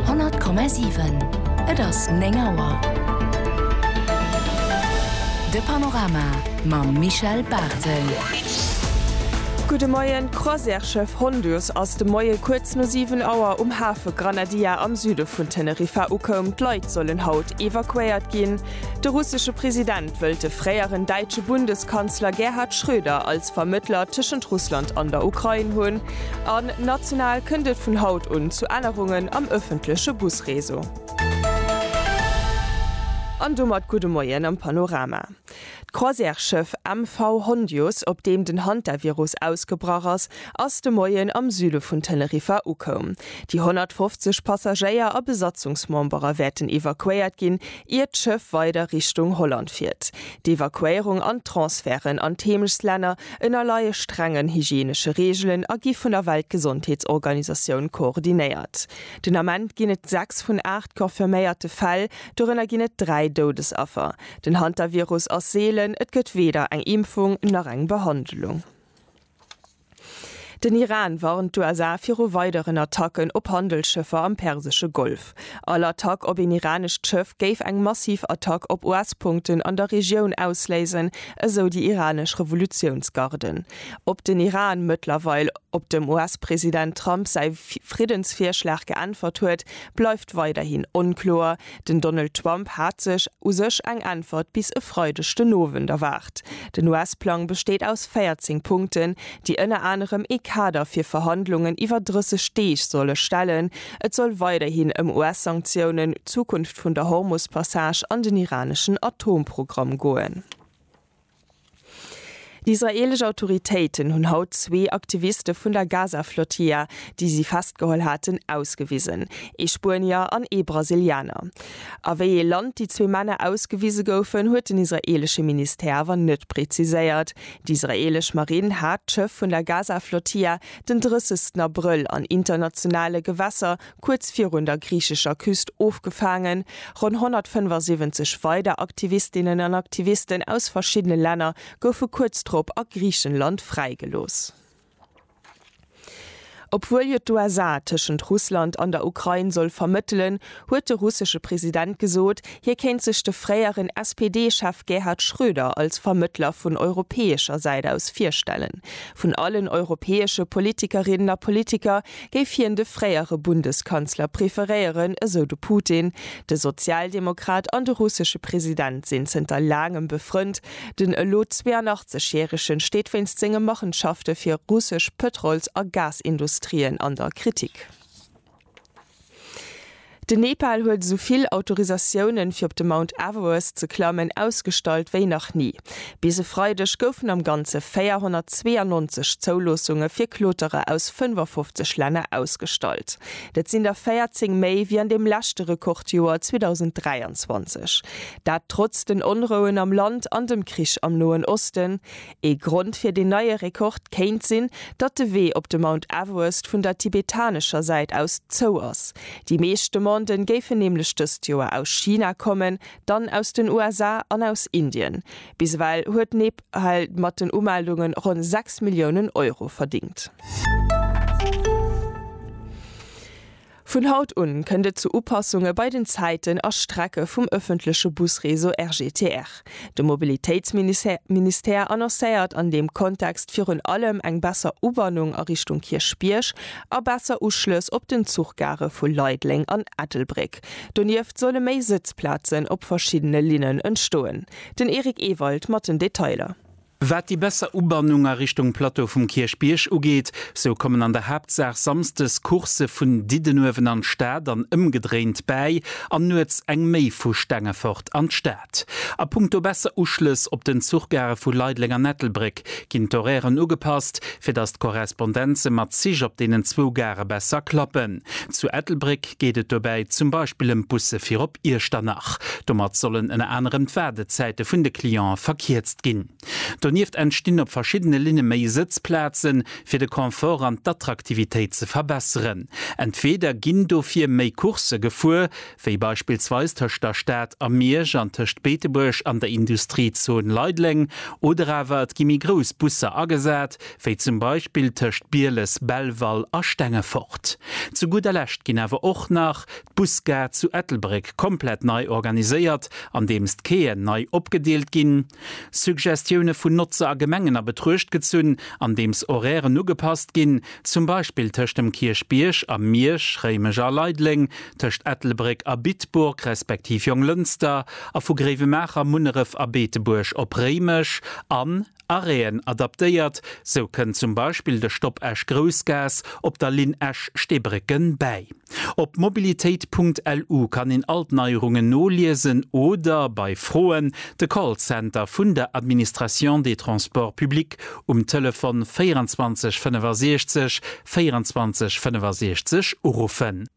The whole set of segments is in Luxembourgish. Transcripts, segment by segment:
100,7. Et ass 9 Auer. De Panorama mam Michel Barthel. Gudde Moien, D'Croisièreschiff Honduus ass de Moie kuerz no 7 Auer um Hafe Granadilla am Süde vun Teneriffa ukoum. D'Leit sollen haut evakuéiert ginn. De russesche President wëllt de fréieren däitsche Bundeskanzler Gerhard Schröder als Vermëttler tëschent Russland an der Ukrain hunn. An national kënnt et vun haut un zu Ännerungen am ëffentleche Busreseau. An domat gudde Moien am Panorama. D'Croisièreschëff MV Hondius, op deem den Hantavirus ausgebrach ass, ass de Moien am Süde vun Teneriffa ukoum. Déi 150 Passagéier a Besatzungsmembere wäerten evakuéiert ginn, ier d'Schëff weider Richtung Holland fiert. D'Evakuéierung an d'Transferten an d'Heemechslänner ënnerleie strengen hygienesche Reegelen a gi vun der Weltgesondheetsorganisatioun koordinéiert. Den Ament ginn et 6 vun 8 confirméierte Fäll, dorënner ginn et 3 Doudesaffer. Den Hantavirus ass seelen, et gëtt weder eng Impfung nach eng Behandlung. Den Iran warnt d'USA viru weideren Attacken op Handelsschëffer am persesche Golf. All Attack op een iranescht Schëff géif eng massiv Attack op US-Punkten an der Regioun ausléisen, esou déi iranesch Revolutiounsgarden. Ob den Iran mëttlerweil op dem US-President Trump säi Friddensvirschlag geäntwert huet, bleift weiderhin onkloer. Den Donald Trump hat sech u sech eng Äntwert bis e Freideg den Owend erwaart. Den US-Plang besteet aus 14 Punkten, déi ënner anerem ee Kader fir Verhandlungen iwwer 30 Deeg solle stellen. Et soll weiderhin ëm US-Sanktiounen, d'Zukunft vun der Hormus-Passage an den iraneschen Atomprogramm goen. D'israeelesch Autoritéiten hunn haut zwee Aktiviste vun der Gaza-Flotilla, déi si festgeholl haten, ausgewisen, ee Spuenier an ee Brasilianer. A wéi ee Land déi zwee Männer ausgewise goufen, huet den israeelesche Ministère awer net preziséiert. D'israeelesch Marinn hat d'Schëff vun der Gaza-Flotilla den 30 Abrëll an internationale Gewässer kuerz virun der griichescher Küst ofgefaangen, ronn 175 weider Aktivistinnen an Aktivisten aus verschiddene Länner goufe kuerz drop a Griichenland fräigelooss. Obwuel jo d'USA tëschent Russland an der Ukrain soll vermëttelen, huet de russesche President gesot, hie kéint sech de fréieren SPD-Chef Gerhard Schröder als Vermëttler vun europäescher Säit aus virstellen. Vun allen europäesche Politikerinnen a Politiker géif hien de fréiere Bundeskanzler preferéieren, esou de Putin. De Sozialdemokrat an de russesche President sinn zënter laangem befrënnt. Den elo 82 järegen steet wéinst senge Machenschafte fir russesch Pëtrols a Gasindustrien an der Kritik. Den Nepal huet esou vill Autorisatiounen, fir op de Mount Everest ze klammen, ausgestallt wéi nach ni. Bis e Freideg goufen am Ganze 492 Zouloossunge fir Kloterer aus 55 Länner ausgestallt. Dat sinn der 14 méi wéi an deem leschte Rekordjoer 2023. Dat trotz den Onrouen am Land an dem Krich am Noen Osten. Ee Grond fir deen neie Rekord kéint sinn, datt de Wee op de Mount Everest vun der tibetanescher Säit aus zou ass. Déi meescht Demanden géifen nämlech dëst Joer aus China kommen, dann aus den USA an aus Indien. Bis ewell huet Nepal mat den Umeldunge ronn 6 Milliounen Euro verdéngt. Vun haut un kënnt et zu Upassunge bei den Zäiten a Strecke vum ëffentleche Busreseau RGTR. De Mobilitéitsministère annoncéiert an deem Kontext virun allem eng besser Ubannung a Richtung Kierchbierg a besser Uschlëss op den Zuchgare vu Leideleng an Ettelbréck. Donieft solle méi Sëtzplazen op verschiddene Linnen entstoen. Den Eric Ewald mat den Detailer. Wat déi besser Ubannung a Richtung Plateau vum Kierchbierg ugeet, sou kommen an der Haaptsaach samsdes Coursë vun Diddenuewen an d'Stad an ëmgedréint bäi an nuets eng méi vu Stengefort an d'Stad. A punkto besser Uschlëss op den Zuchgare vu Leideleng an Ettelbréck ginn d'Horairen ugepasst, fir datt d'Korrespondenze mat Zich op deenen zwou Gare besser klappen. Zu Ettelbréck geet et dobäi zum Beispill ëm d'Busse fir op Iechternach. Domat sollen ënner anerem d'Waardezäite vun de Clientë verkierzt ginn. Donieft entstinn op verschiddene Linne méi Sëtzplazen, fir de Confort an d'Attraktivitéit ze verbesseren. Entweeder ginn dofir méi Coursë gefuer, wéi beispillsweis tëscht der Stad a Miersch an tëscht Beetebuerg an der Industriezone Leideleng, oder awer et gi méi grouss Busser agesat, wéi zum Beispill tëscht Bieles, Belval a Stengefort. Zu gudder Lescht ginn awer och nach d'Busgare zu Ettelbréck komplett nei organiséiert, andeems d'Quaien nei opgedeelt ginn, Suggestioune vun Notzer a Gemengen a Betruecht gezunn, andeems Horairen ugepasst ginn, zum Beispill tëscht dem Kierchbierg a Miersch, Réimech a Leideleng, tëscht Ettelbréck a Bitburg respektiv Jonglënster a vu Gréiwemaacher, Munneref a Beetebuerg op Réimech an Arrêten adaptéiert. Sou kënn zum Beispill de Stopp Esch-Groussgaass op der Linn Esch-Steebrécken bäi. Op mobilitéit.lu kann een all d'Neierungen noliesen oder bei Froen de Callcenter vun der Administration des Transports publics um Telefon 24 65 24 65 uruffen.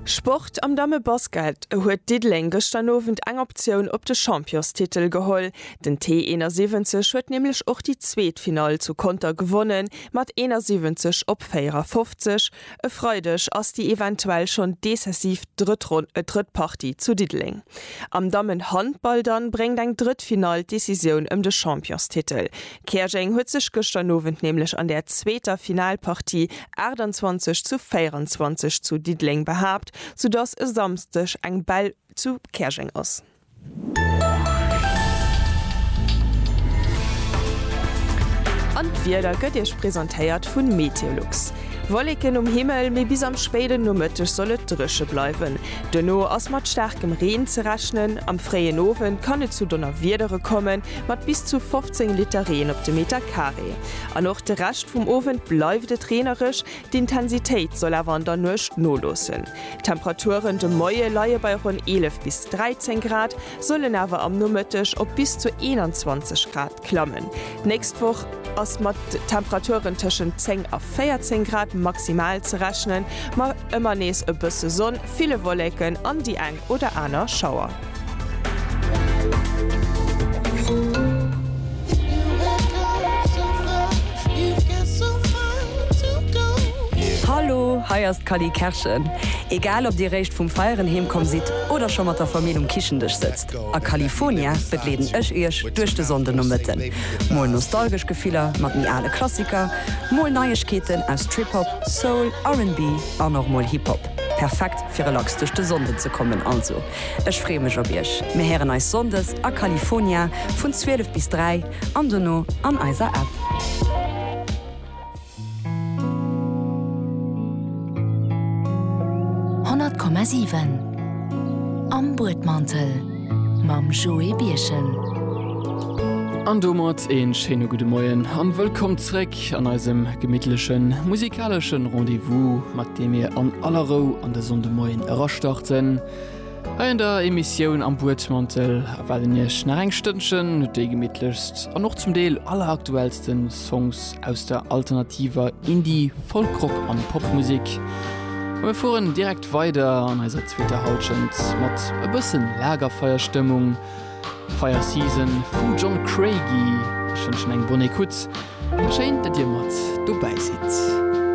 Sport, Am Dammebasket huet Diddeleng gëschter Owend eng Optioun op de Championstitel geholl. Den T71 huet nämlech och déi zweet Finall zu Conter gewonnen, Mat 71 op 54 e Freideg ass déi eventuell schonn decisiv drëtt Ronn et drëtt Partie zu Diddeleng. Am Dammenhandball dann bréngt eng drëtt Finall d'Decisioun ëm de Championstitel. Käerjeng huet sech gëschter Nowend nämlech an der zweeter Finalpartie 28 zu 24 zu Diddeleng behaapt, soudass e Samsdeg eng Bell zu Käerjeng ass. An d'Wieder gëtt Iech presentéiert vun Meteolux. Wolleken um Himmel, mee bis am spéiden Nomëtteg soll et dréche bleiwen. Duerno ass mat staarkem Reen ze rechnen. Am fréien Owend kann et zu Donnerwiedere kommen, mat bis zu 15 Liter Reen op de Meter Carré. An och de Rescht vum Owend bleift et reenereg, D'Intensitéit soll awer an der Nuecht noloossen. D'Temperaturen de Moie leie bei ronn 11 bis 13 Grad, sollen awer am Nomëtteg op bis zu 21 Grad klammen. D'nächst Woch ass mat Temperaturen tëschent 10 a 14 Grad maximal ze rechnen, ma ëmmer nees e bësse Sonn, ville Wolleken an déi oder aner Schauer. Hallo, hei ass d'Cally Kerschen. Egal ob dir réischt vum Feieren heem komm sidd oder scho mat der Famill um Kichendësch sëtzt, a Califonia begleeden ech iech duerch de Sonndenomëtten. Mol nostalgesch Gefiller mat méi ale Klassiker, mol Neiegkeeten aus Trip-Hop, Soul, RnB an och mol Hip-Hop. Perfekt fir relax duerch de Sonnden ze kommen. Also ech freeë mech op iech. Mir héieren eis Sonndes a California vun 12 bis 3 an dono an eiser App. Honnert Komma siwen Am Buedmantel mam Joé Birchen. An domat een schéine gudde Moien an wëllkomm zréck. Musek an eisem gemittlechen musikaleschen Rendez-vous, mat deem mir an aller Rou an de Sonndemoien erastarten. Hei an der Emissioun Am Buedmantel erwaarden Iech nach eng Stënnchen déi gemittlechst an och zum Deel alleraktuellsten Songs aus der alternativer Indie-, Folk-Rock an Popmusek. A mir fueren direkt weider an eiser zweeter Halschent mat e bëssen Lagerfeierstëmmung. Fire Season vum John Craigie. Ech wënschen eng bonne écoute a schéin, datt dir mat dobäi sidd.